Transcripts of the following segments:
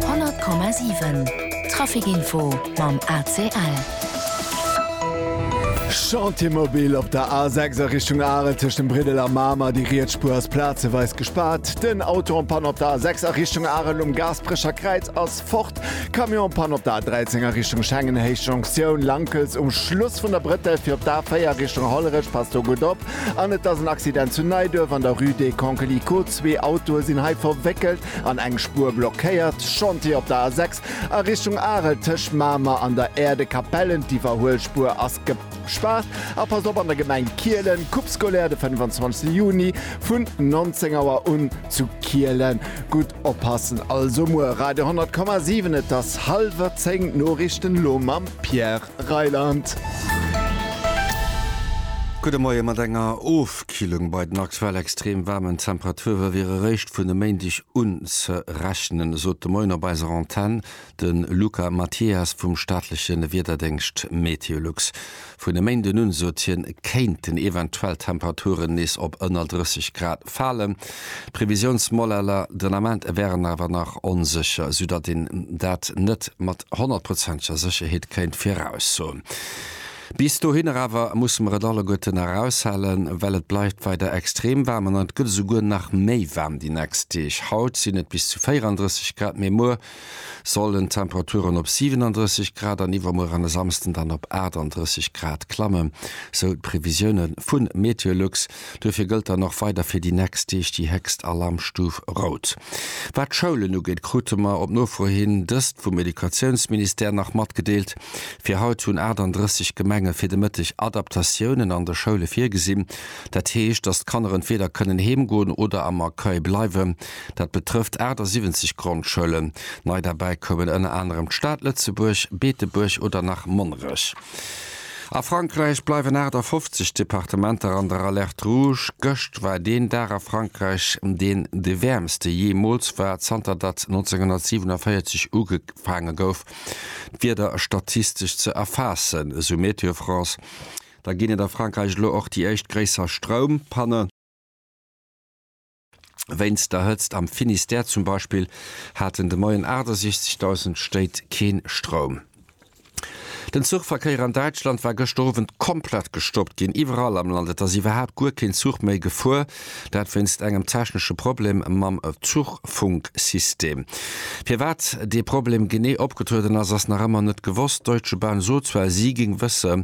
100,7 Traficinfo mam ACL. Chantier mobil op der A6 a Richtung Arel tëscht dem Briddel a Mamer. Déi riets Spuer ass plazeweis gespaart. Den Auto en panne op der A6 a Richtung Arel um Gaasperecher Kräiz ass fort. Camion en panne op der A13 a Richtung Schengen, Héich Jonktioun Lankels um Schluss vun der Brëttel. Fir op d'A4 a Richtung Hollerech, passt do gutt op. An et ass en Accident zu Neiduerf an der Rue des Concles Icot. Zwee Autoe sinn hei verwéckelt an eng Spuer blockéiert. Chantier op der A6 a Richtung Arel tëscht Mamer an der Aerdekapellen. D'Iwwerhuelspuer ass gespaart. A passt op, an der Gemeng Kielen, Coupe scolaire de 25 Juni vun 19 Auer un zu Kielen. Gutt oppassen also muer. Radio 100,7 Et ass hallwer 10, d'Noriichten elo mam Pierre. Rheinland. Gudde Moien, Mat enger Ofkillung bei den aktuell extrem waarmen Temperature wier eréischt vun e Méindeg un ze rechnen, esot de Moien op eiser Antenn de Luca Mathias vum staatleche Wiederdéngscht Meteolux. Vun e Méinden un, sot hien, kéinten eventuell d'Temperaturen nees op ënner 30 Grad falen. D'Previsiounsmodeller den Ament wären awer nach onsécher, sou datt een dat net mat honnertprozenteger Sécherheet kéint viraussoen. Bis dohinner awer musse mer et alleguerten eraushalen, well et bleift weider extrem waarm an et gëtt esouguer nach méi waarm déi nächst Deeg. Haut sinn et bis zu 34 Grad, mee muer sollen d'Temperaturen op 37 Grad an iwwermuer an e Samsden dann op 38 Grad klammen, sou d'Previsioune vu Meteolux. Duerfir gëllt dann och weider fir déi nächst Deeg déi héchst Alarmstuf rout. Wat d'Schoulen ugeet, krute mer op Nofro hin dëst vum Educatiounsministère nach matgedeelt. Fir haut hunn 38 Gemenge fir de Mëtteg Adaptatiounen an de Schoule virgesinn. Dat heescht, datt d'Kanner entweeder kënnen heem goen oder am Accueil bleiwen. Dat betrëfft 78 Grondschoulen. Nei derbäi koumen ënner anerem d'Stad Lëtzebuerg, Beetebuerg oder nach Monnerech. A Frankräich bleiwen 58 Departementer an der Alerte rouge. Gëscht war deen Dag a Frankräich, deen de wäermste jeemools war, zanter datt 1947 ugefaange gouf, d'Wieder statistesch ze erfaassen, esou Météo France. Da ginn et a Frankräich elo och déi éischt gréisser Stroumpanne. Wéinst der Hëtzt am Finistère zum Beispill haten de Moien 68.000 Stéit keen Stroum. Den Zuchverkéier an Däitschland war gëschter Owend komplett gestoppt ginn. Iwwerall am Land, et ass iwwerhaapt guer keen Zuch méi gefuer, dat wéinst engem technesche Problem mam Zuchfunksystem. Firwat dee Problem genee opgetrueden ass, ass nach ëmmer net gewosst. D'Deutsche Bahn sot zwar, si géing wëssen,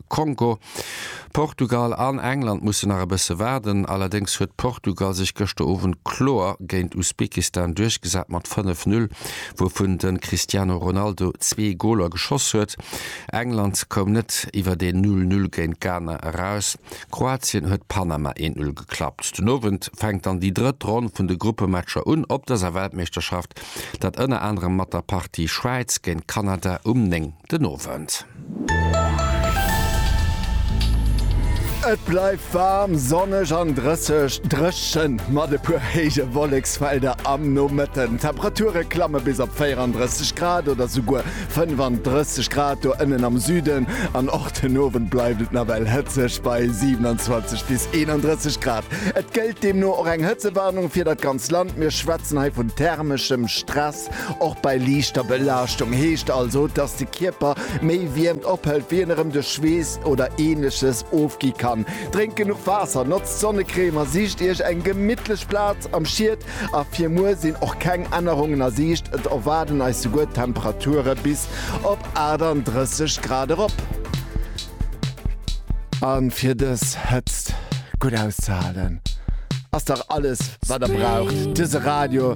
Kongo. Portugal an England mussen nach e bësse waarden. Allerdéngs huet Portugal sech gëschter Owend kloer géint Usbekistan duerchgesat mat 5, 0, wouvun de Cristiano Ronaldo zwee Goler geschoss huet. England koum net iwwer een 0, 0 géint Ghana eraus. Kroatien huet Panama 1, 0 geklappt. Den Owend fänkt dann déi drëtt Ronn vun de Gruppematcher un op dëser Weltmeeschterschaft, dat ënner anerem mat der Partie Schwäiz géint Kanada um 9. den Owend. Et bleift waarm, sonneg an drësseg, dréchen mat e puer héije Wolleksfelder am Nomëtten. D'Temperature klamme bis op 34 Grad oder souguer 35 Grad do ënnen am Süden an och den Owend bleift et nawell hëtzeg bei 27 bis 31 Grad. Et gëllt deemno och eng Hëtzewarnung fir dat ganz Land. Mir schwätzen hei vun thermeschem Stress. Och bei liichter Belaaschtung heescht also, dass de Kierper méi Wiermt ophëlt, wéi en erëm de Schweess oder Ähnleches ofgi kann. Drénkt genuch Waasser, notzt Sonnecrème a sicht Iech eng gemittlech Plaz am Schied. A fir muer sinn och keng Ännerungen a Siicht, et erwaarden eis souguer Temperature bis op 38 Grad erop. A fir dës Hëtzt gutt auszehalen, ass dach alles, wat der braucht, dëse Radio.